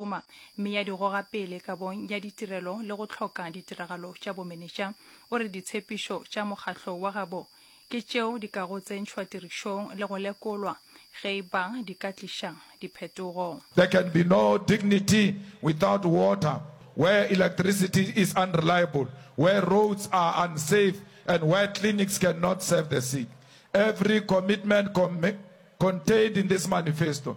Roma, mme ya di goga pele kabong ya ditirelo le go hloka ditiragalo tša bomenetša. O re ditshepišo tša mokgatlo wa gabo ke tšeo di kago tsentšhwa tirišong le go lekolwa ge e ba di ka tliša diphetogo. There can be no dignity without water, where electricity is unreliable, where roads are unsafe and where clinics can not serve the sick. Every commitment contained in this manifesto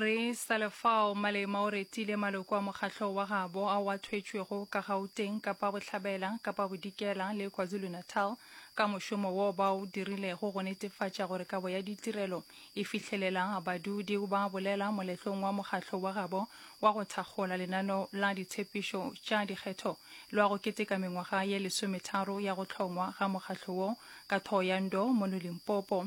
Re sa le fao, Malema o retile maloko a mokgahlo wa gabo ao a thwetšwego ka Gauteng, Kapa Bohlabela, Kapa Bodikela le KwaZulu-Natal ka mošomo woo ba o dirilego go netefatša gore kabo ya ditirelo e fihlelela badudi. O ba bolela moletlong wa mokgahlo wa gabo wa go thakgola lenaneo la ditshepišo tša dikgetho lwa go keteka mengwaga ye lesometharo ya go hlongwa ga mokgahlo woo ka Thohoyandou mono Limpopo.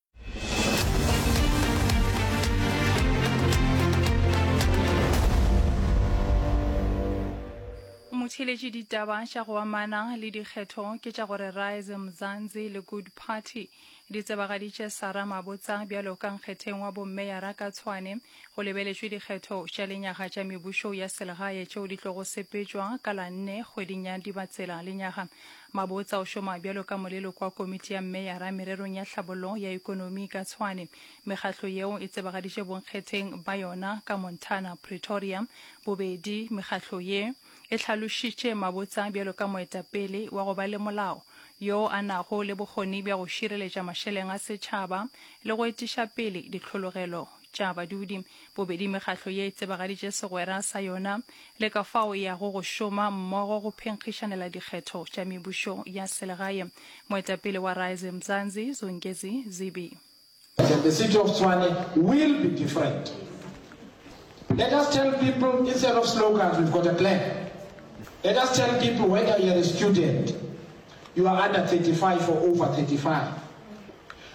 motheletše ditaba tša go amana le dikgetho ke tša gore rise mzanzi le good party di tsebagaditše sara mabotsa bjalo ka nkgetheng wa bommeyara ka tshwane go lebeletšwe dikgetho tša lenyaga tša mebušo ya selegae tšeo di tlogo sepetšwa ka la nne kgweding ya dibatsela lenyaga Mabotsa o šoma bjalo ka moleloko wa komiti ya mmeyara mererong ya tlhabollo ya ekonomi ka Tshwane. Mekgatlo yeo e tsebagaditše bonkgetheng ba yona ka Montana, Pretoria, bobedi. Mekgatlo ye e hlalošitše Mabotsa bjalo ka moetapele wa go ba le molao, yo a nago le bokgoni bja go šireletša mašeleng a setšhaba le go etiša pele ditlhologelo tša badudi. Bobedi mekgatlo ye e tsebagaditše segwera sa yona le ka fao e yago go šoma mmogo go phenkgišanela dikgetho tša mebušo ya selegae. Moetapele wa Rise Mzansi, Zongezi Zibi. Said the city of Tshwane will be different. Let us tell people instead of slogans we've got a plan. Let us tell people whether you are a student, you are under 35 or over 35.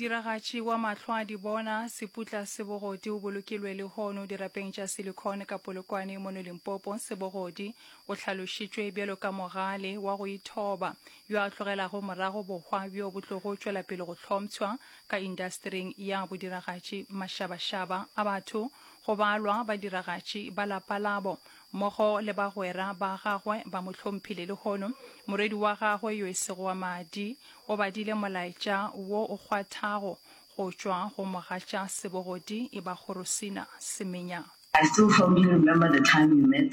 modiragatši wa mahlo a di bona seputla se bogodi o bolokilwe lehono dirapeng tša silicon ka polokwane mono limpopo sebogodi o hlalošitšwe bjalo ka mogale wa go ithoba yo a tlogelago morago bohwa bjo bo tlogo tšwela pele go hlomtshwa ka indasetering ya bodiragatši mašabašaba a batho Go balwa badiragatši ba lapa labo, mmogo le bagwera ba gagwe ba mo hlomphile. Lehono morwedi wa gagwe yo e sego wa madi o badile molaetša wo o kgwathago go tšwa go mogatša sebogodi, e ba Gorosina Semenya. I still fondly remember the time we met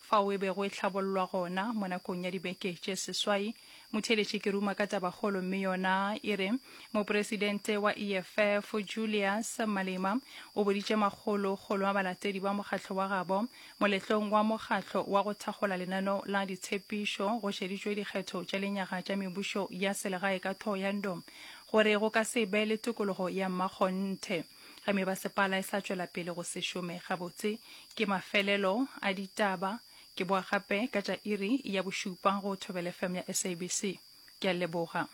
Fao e bego e hlabollwa gona, mo nakong ya dibeke tše seswai, motheeletši ke ruma ka tabakgolo mme yona e re, Mopresidente wa EFF, Julius Malema, o boditše makgolo kgolo a balatedi ba mokgatlo wa gabo moletlong wa mokgatlo wa go thakgola lenano la ditshepišo go šeditšwe dikgetho tša lenyaga tša mebušo ya selegae ka Thohoyandou gore go ka se be le tokologo ya mmakgonthe. Ge mebasepala e sa tšwela pele go se šome gabotse, ke mafelelo a ditaba. Ke boa gape ka tša iri ya bošupa go Thobela FM ya SABC. Ke a leboga.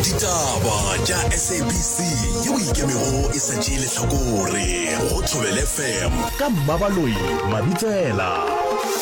Ditaba tša SABC yeo e ikemego e sa tšee lehlakore go Thobela FM ka Mmabaloi Mabitsela.